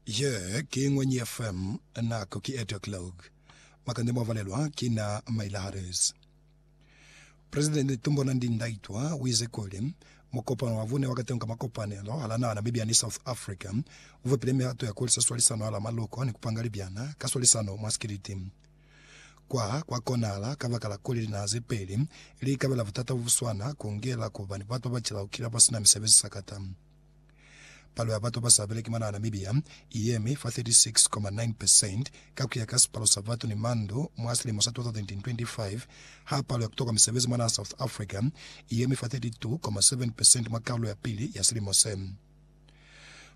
Ye ki Ngwenyi FM, nako ki 8 o'clock. Makande mwa valelwa ki na maila harezi. Presidente Tumbona Ndi Ndaitwa wize kuli, Mukopano wa vune wa katengo ka makopanelo hala naha Namibia ni South Africa uvepile mihato ya kuhulisa swalisano hala maloko ni kupanga libyana ka swalisano mwa sikiliti. Kwa kwa konahala kabakala kuli linaha zepeli li ikabela butata bobuswana kungela kuba ni batu babacela kukila basina misebezi sakata. Palo ya batu basa beleki mwa naha Namibia i yemi fa 36.9 percent ka kuya ka sipalo sa batu ni mandu mwa silimo sa 2025, ha palo ya kutokwa misebezi mwa naha South Africa i yemi fa 32.7 percent mwa kalulo ya pili ya silimo se.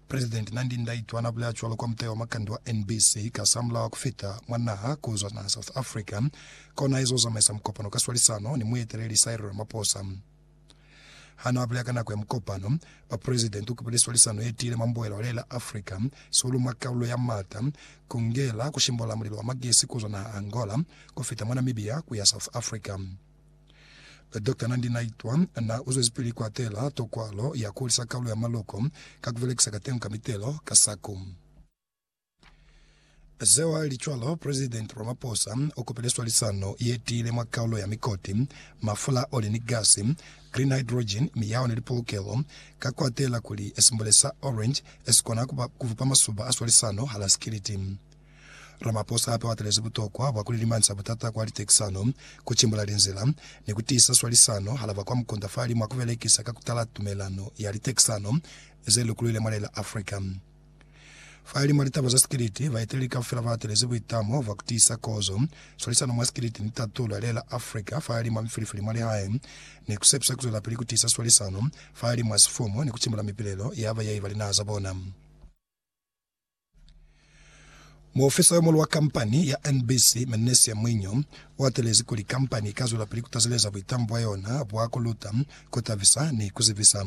President Nandi Ndaitwah na bulela cwalo kwa mutau wa makande wa NBC kasamulaho ku fita mwa naha kuzwa naha South Africa kona ezo zamaisa mukopano ka swalisano ni mueteleli Cyril Ramaphosa. Ha n'a bulela ka nako ya mukopano wa President u kupile swalisano ye tiile mwa mbuhela wa lela Africa, sihulu mwa kaulo ya Mata, ku ngela ku shimbolela mulilo wa magesi ku zwa naha Angola ku fita mwa Namibia ku ya South Africa. Doctor Nandi Naitwa n'a uzwezipili ku atela tokwalo ya ku hulisa kaulo ya maloko ka ku belekisa kateño ka mitelo ka saku. Sewalichwalo President Ramaphosa o kopile swalisano ye tiile mwa kaulo ya mikoti, mafula, oli ni gasi, green hydrogen, miyaho ni lipolokelo, ka ku atela kuli simbule sa Orange si kona ku bupa masuba a swalisano hala sikiliti. Ramaphosa hape o atelezi butokwa bwa ku lilimanisa butata kwa litekisano, ku cimbula linzila, ni ku tiisa swalisano hala ba kwa mukunda fa limo a ku belekisa ka ku tala tumelano ya litekisano ze lukuluile mwa lela Africa. Fahalimw'a litaba za sikiliti, baeteleli kaufela ba atelezi buitamo bwa ku tiisa kozo, swalisano mwa sikiliti ni tato lwa lela Africa fahalimw'a mifilifili mwa lihae, ni ku sepisa ku zwelapili ku tiisa swalisano fahalimw'a sifumu ni ku timula mipilelo ya bayai ba linaha za bona. Muofisa yo muhulu wa kampani ya NBC, Mennesia Mwinyo, u atelezi kuli kampani i ka zwelapili ku tazeleza buitamo bwa yona bwa ku luta, ku tabisa ni ku zibisa.